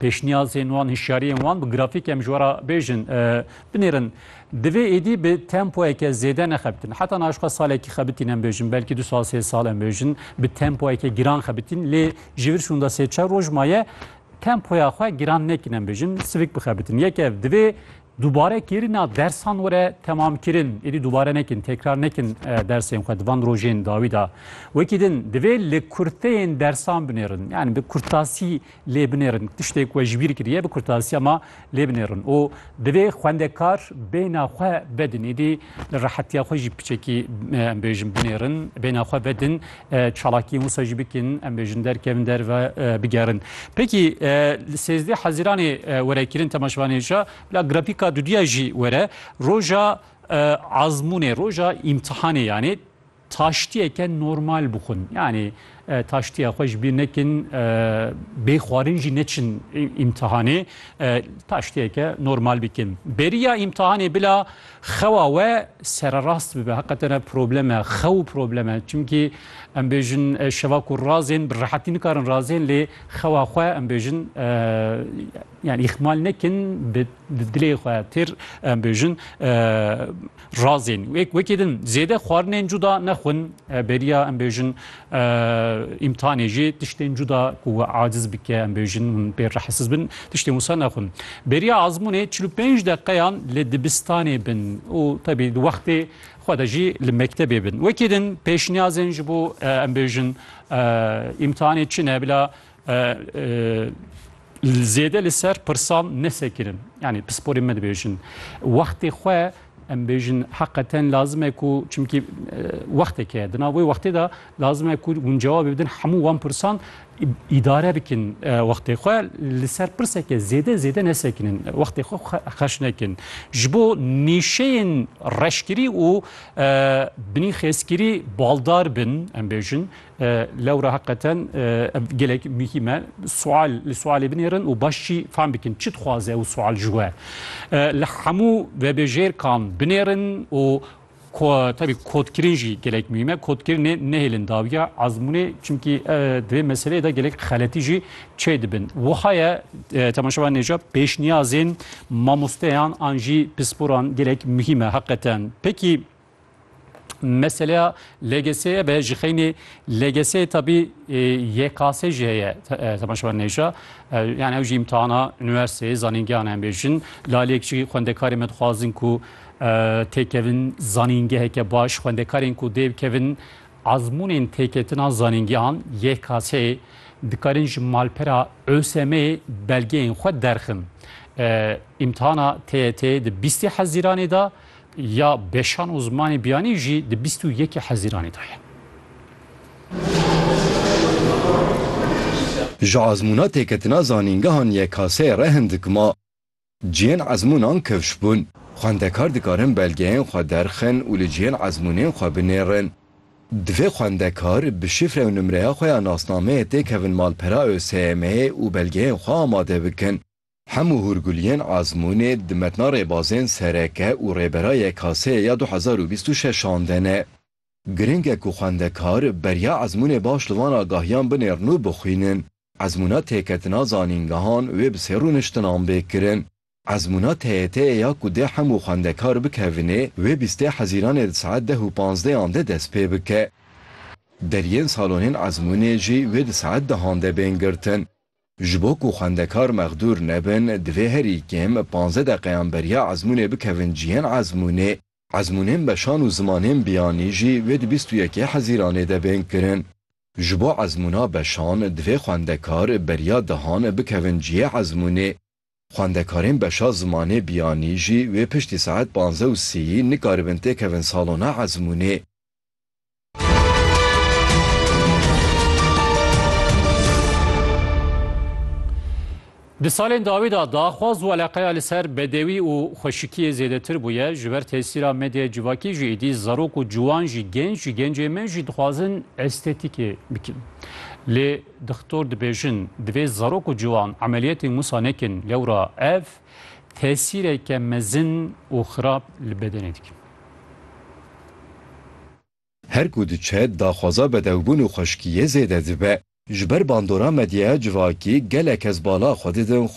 pêşniyazên wan, hişyariyên wan bi grafîk em ji we re bêjin, binêrin. Divê êdî bi tempoyeke zêde nexebitin. Heta niha ji xwe salekî xebitîn em bêjin, belkî du sal sê sal em bêjin bi tempoyeke giran xebitîn. Lê ji vir şûnda sê çar roj maye tempoya xwe giran nekin em bêjin sivik bixebitin. Yek ev divê dubare kêrina dersan were temamkirin. Êdî dubare nekin, tekrar nekin dersên xwe di van rojên dawî de. Wekî din divê li kurteyên dersan binêrin. Yani bi kurtasî lê binêrin tiştê ku we ji bîr kiriye bi kurtasiya ma lê binêrin û divê xwendekar bêhna xwe vedin êdî li rehetiya xwe jî piçekî em bêjin binêrin bêhna xwe vedin çalakiyên wisa jî bikin em bêjin derkevin derve bigerin pekî li sêzdeh heziranê were kirin temaşvanê jî bila grafîka dudiya jî were roja azmûnê roja îmtihanê yanê Taştiyeke normal bixwin. Yanî taştiya xwe ji bîr nekin, bê xwarin jî neçin îmtihanê. Taştiyeke normal bikin. Beriya îmtihanê bila xewa we sererast bibe. Heqete ne problem e. Xew û problem e. Çimkî em bêjin şeva ku razên bi rehetî nikarin razên lê xewa xwe em bêjin yani îhmal nekin bi dilê xwe têr em bêjin Razên wêk wekê din zêde xwarinên cuda nexwin beriya em bêjin îmtihanê jî tiştên cuda ku we aciz bike em bêjin hûn pê rehisiz bin tiştên wisa nexwin. Beriya azmûnê çil û pênc deqeyan li dibistanê bin û tebî di wextê xwe de jî li mektebê bin. Wekê din pêşniyazên ji bo em bêjin îmtihanê çi ne bila Zêde li ser pirsan nesekirin. Yanî pisporê me dibêjin. Wextê xwe em bêjin heqeten lazim e ku çimkî wextek heye. Di nav wê wextê de lazim e ku hûn cewabê bidin hemû wan pirsan îdare bikin wextê xwe li ser pirseke zêde zêde nesekinin. Wextê xwe xerç nekin. Ji bo nîşeyên reşkirî û binî xêzkirî baldar bin em bêjin. Lewra heqeten ev gelek muhîm e. Sual li sualê binêrin û baş jî fam bikin çi dixwaze ew sual ji we. Li hemû vebêjêrkan binêrin û tabi kodkirin jî gelek muhîm e. Kodkirinê nehêlin dawiya ezmûnê çimkî di vê meseleyê de gelek xeletî jî çê dibin. Wiha ye temaşevan nêca pêşniyazên mamosteyan an jî pisporan gelek muhîm e heqeten. Pekî Meseleya LGS'ye be ji xeynê LGS tabî YKS jî heye temaşevan nêja yani ew jî imtihana üniversiteyê zanîngehan em bêjin lalek jî xwendekarê me dixwazin ku têkevin zanîngeheke baş xwendekarên ku dê bikevin azmûnên têketina zanîngehan YKS'ê dikarin ji malpera ÖSM'ê belgeyên xwe derxin. İmtihana TYT di 20 Hezîranê da ya beşan û zimanê biyanî jî di bîst û yekê Hezîranê de ye. Ji ezmûna têketina zanîngehan YKS'ê re hin dikim a cihên ezmûnan kevş bûn. Xwendekar dikarin belgeyên xwe derxin û li cihên ezmûnên xwe binêrin. Divê xwendekar bi şifre û nimreya xwe ya nasnameyê têkevin malpera ÖSYM'ê û belgeyên xwe amade bikin. Hemû hûrguliyên Azmûnê di metna rêbazên sereke û rêbera YKS'ê ya du hezar û bîst û şeş an de ne. Girîng e ku xwendekar beriya ezmûnê baş li van agahiyan binêrin û bixwînin. Ezmûna têketina zanîngehan wê bi sê rûniştinan bê kirin. Ezmûna TYT'ê ya ku dê hemû xwendekar bikevine wê bîstê hezîranê di saet deh û panzdeh an de dest pê bike. Deriyên salonên ezmûnê jî wê di saet dehan de bên girtin. Ji bo ku xwendekar mexdûr nebin, divê herî kêm panzdeh deqeyan beriya ezmûnê bikevin cihên ezmûnê. Ezmûnên beşan û zimanên biyanî jî wê di bîst û yekê Hezîranê de bên kirin. Ji bo ezmûna beşan, divê xwendekar beriya dehan bikevin cihê ezmûnê. Xwendekarên beşa zimanê biyanî jî wê piştî saet panzdeh û sîyî nikaribin têkevin salona ezmûnê. Di salên dawî de daxwaz û eleqeya li ser bedewî û xweşikiyê zêdetir bûye. Ji ber tesîra medyaya civakî jî êdî zarok û ciwan jî genc jî gencên me jî dixwazin estetîkê bikin. Lê Doktor dibêjin, divê zarok û ciwan emeliyetên wisa nekin, lewra ev tesîreke mezin û xirab li bedenê dikin. Her ku diçe daxwaza bedewbûn û xweşkiyê zêde dibe. Ji ber bandora medyaya civakî gelek kes bala xwe didin